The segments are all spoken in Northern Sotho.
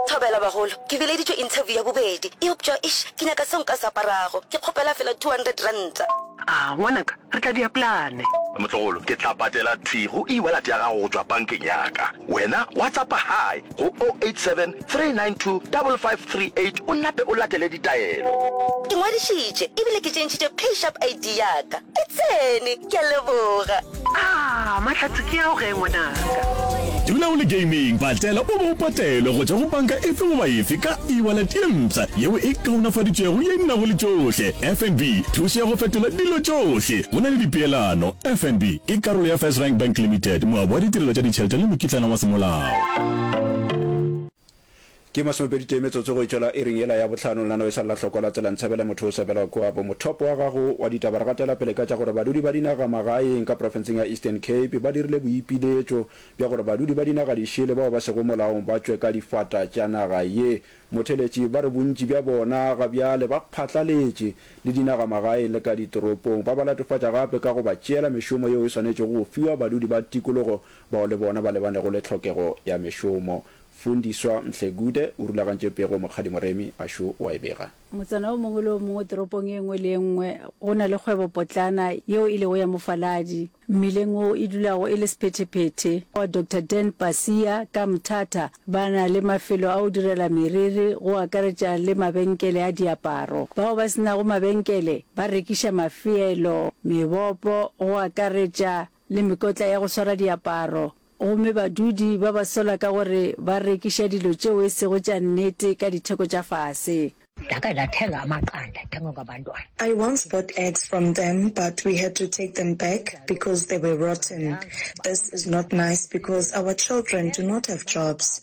Thobela bagolo, ke bileditšwe interview ya bobedi, eupša eish ke nyaka seo nka se aparago, ke kgopela fela two hundred ranta. Aa ngwanaka, re tla dia plane. Motlogolo, ke tla patela thwi go e-wallet ya gago go tšwa bankeng ya ka. Wena WhatsAppa Hi go o eight seven three nine two double five three eight o nape o latele ditaelo. Ke ngwadišitše ebile ke tšentšhitše PayShap ID ya ka. E tsene! Ke a leboga. Aah Mahlatse ke ao ge ngwanaka. Dula o le gaming, patela o bo o patelwe go tšwa go banka efe goba efe ka e-wallet ye mpsha yeo e kaonafaditšwego ye e nago le tšohle. FNB, thušo ya go fetola dilo tšohle go na le dipeelano. FNB ke karolo ya First Rank Bank Limited, moabi wa ditirelo tša ditšhelete le mokitlana wa semolao. Ke masomepedi tee metsotso go e tšwela iring yela ya bohlano, nna no e sa lla hloko la tsela Ntshabela motho o sebela kua bo mothopo wa gago wa ditaba. Re gatela pele ka tša gore badudi ba dinaga magaeng ka profenseng ya Eastern Cape ba dirile boipiletšo bja gore badudi ba dinaga dišele bao ba sego molaong ba tšwe ka difata tša naga ye. Motheletši ba re bontši bja bona ga bjale ba phatlaletše le dinaga magaeng le ka ditoropong. Ba ba latofatša gape ka go ba tšeela mešomo yeo e swanetšego go fiwa badudi ba tikologo bao le bona ba lebanego le tlhokego ya mešomo. Fundiswa Mhlegude o rulagantše pego Mokgadi Moremi a šo wa e bega. Motsana o mongwe le o mongwe toropong e nngwe le e nngwe go na le kgwebopotlana yeo e lego ya mofaladi. Mmileng wo e dulago e le sephetephete wa Doctor Dan Pasia ka Mthatha ba na le mafelo a go direla meriri go akaretša le mabenkele a diaparo. Bao ba se nago mabenkele ba rekiša mafeelo, mebopo go akaretša le mekotla ya go swara diaparo, gomme badudi ba ba sola ka gore ba rekiša dilo tšeo e sego tša nnete ka ditheko tša fase. Ndakhe ndathenga amaqanda athengwa ngabantwana. I once bought eggs from them but we had to take them back because they were rotten. This is not nice because our children do not have jobs.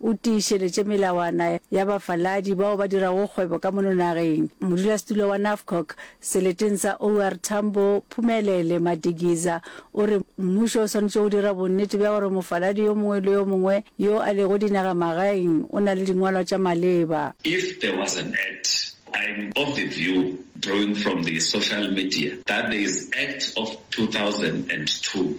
o tiišeletše melawana ya bafaladi bao ba dirago kgwebo ka mono nageng. Modulasetulo wa NAFCOC seleteng sa OR Tambo, Phumelele Madikiza, o re mmušo o swanetše go dira bonnete bja gore mofaladi yo mongwe le yo mongwe yo a lego dinagamagaeng o na le dingwalwa tša maleba. If there was an act, I'm of the view, drawing from the social media, that there is Act of 2002,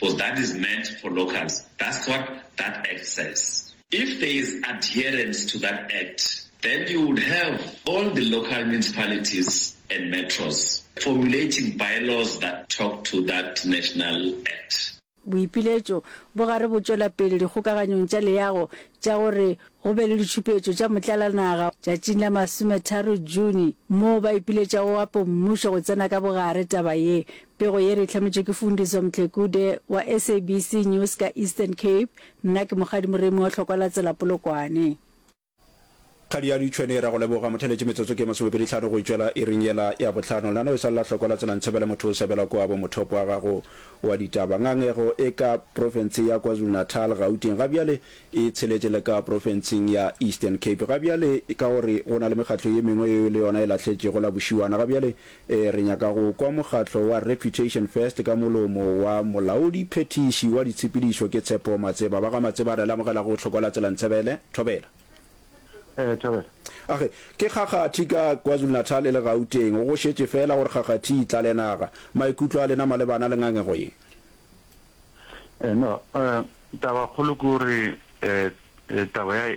Cos that is meant for locals, that's what that act says. If there is adherence to that act, then you would have all the local municipalities and metros formulating bylaws that talk to that national act. Boipiletšo bo gare bo tšwela pele dikgokaganyong tša leago tša gore go be le ditšhupetšo tša motlalanaga tšatšing la masometharo June moo ba ipiletšago gape mmušo go tsena ka bogare taba ye Pego ye re e hlametšwe ke Fundiso Mtlekude wa SABC News ka Eastern Cape. Nna ke Mokgadi Moremi wa Hlokwa la Tsela Polokwane. Kgadi ya Lutshwene ra go leboga. Motheletše metsotso ke masomepedi hlano go itšwela iring yela ya bohlano. Nano e swalela Hlokwa la Tsela Ntshebele motho o sebela kua bo mothopo wa gago wa ditaba. Ngangego e ka profense ya KwaZulu-Natal, Gauteng ga bjale e tsheletše le ka profenseng ya Eastern Cape. Ga bjale ka gore go na le mekgatlo ye mengwe yeo le yona e lahletšego la bošiwana ga bjale Ee, re nyaka go kwa mokgatlo wa Reputation First ka molomo wa Molaodi Phethiši wa Ditshepedišo ke Tshepo Matseba. Ba ga Matseba re le amogela go Bohlokwa la Tsela Ntsebele, Thobela. Ee, Thobela. Age, ke kgakgathi ka KwaZulu-Natal e le Gauteng. Go šetše feela gore kgakgathi e tlale naga. Maikutlo a lena malebana le ngangego ye? Ee, no, taba kgolo ke gore taba ya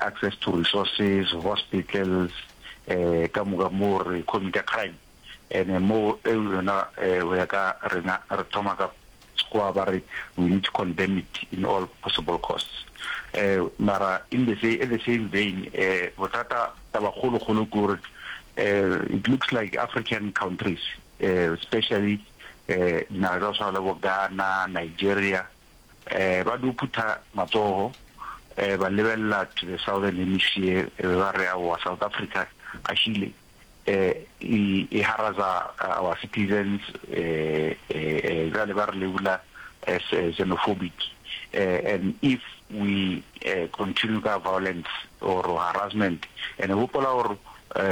access to resources, hospitals, ka moka mo re committer crime ene mo e yona go ya ka rena re thoma ka sekgowa ba re we need to condemn it in all possible costs mara in the same at the same vein bothata taba kgolo kgolo ke gore it looks like African countries especially dinaga tsa go tshwana le bo Ghana, Nigeria Ba no phutha matsogo ba lebelela to the southern hemisphere e be ba re, Aowa, South Africa ga se ile e haraza our citizens, bjale ba re labela as xenophobic and if we continue ka violence or harassment. And gopola gore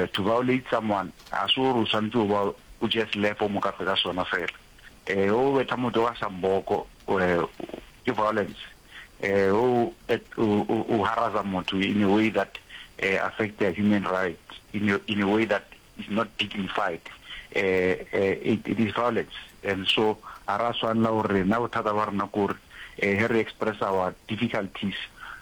to violate someone ga se gore o swanetše go ba o just le fo mokafe ka sona fela. e o betha motho ka samboko e ke violence e o o haraza motho in a way that e affect their human rights in a, in a way that is not dignified e it, it is violence and so ara swanela gore rena bothata ba rena kore e he re express our difficulties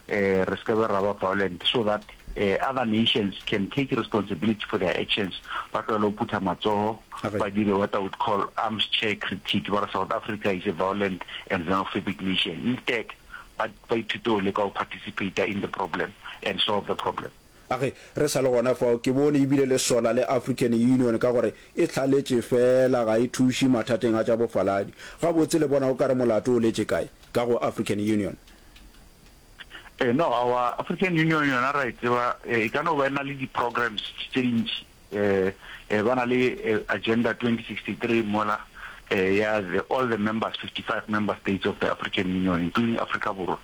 e re seke ra ba violent so that Other nations can take responsibility for their actions, ba tlogele go phutha matsogo, ba dire what I would call arms chair critique, ba re South Africa is a violent and xenophobic nation. Instead, ba ba ithute go leka go participater in the problem and solve the problem. A re, Re sa le gona fao, ke bone e bile le sola le African Union ka gore e hlaletše feela ga e thuše mathateng a tša bofaladi. Gabotse le bona o ka re molato o letše kae? Ka go African Union. E no aowa, African Union yona ra e tseba e ka no ba e na le di programs tse dintši e ba na le agenda 2063 mola ya the all the members 55 member states of the African Union including Africa Borwa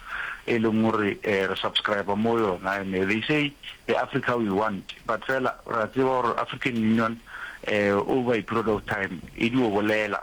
e leng gore re subscribe mo yona and they say the Africa we want but fela ra tseba gore African Union over a period of time e dio bolela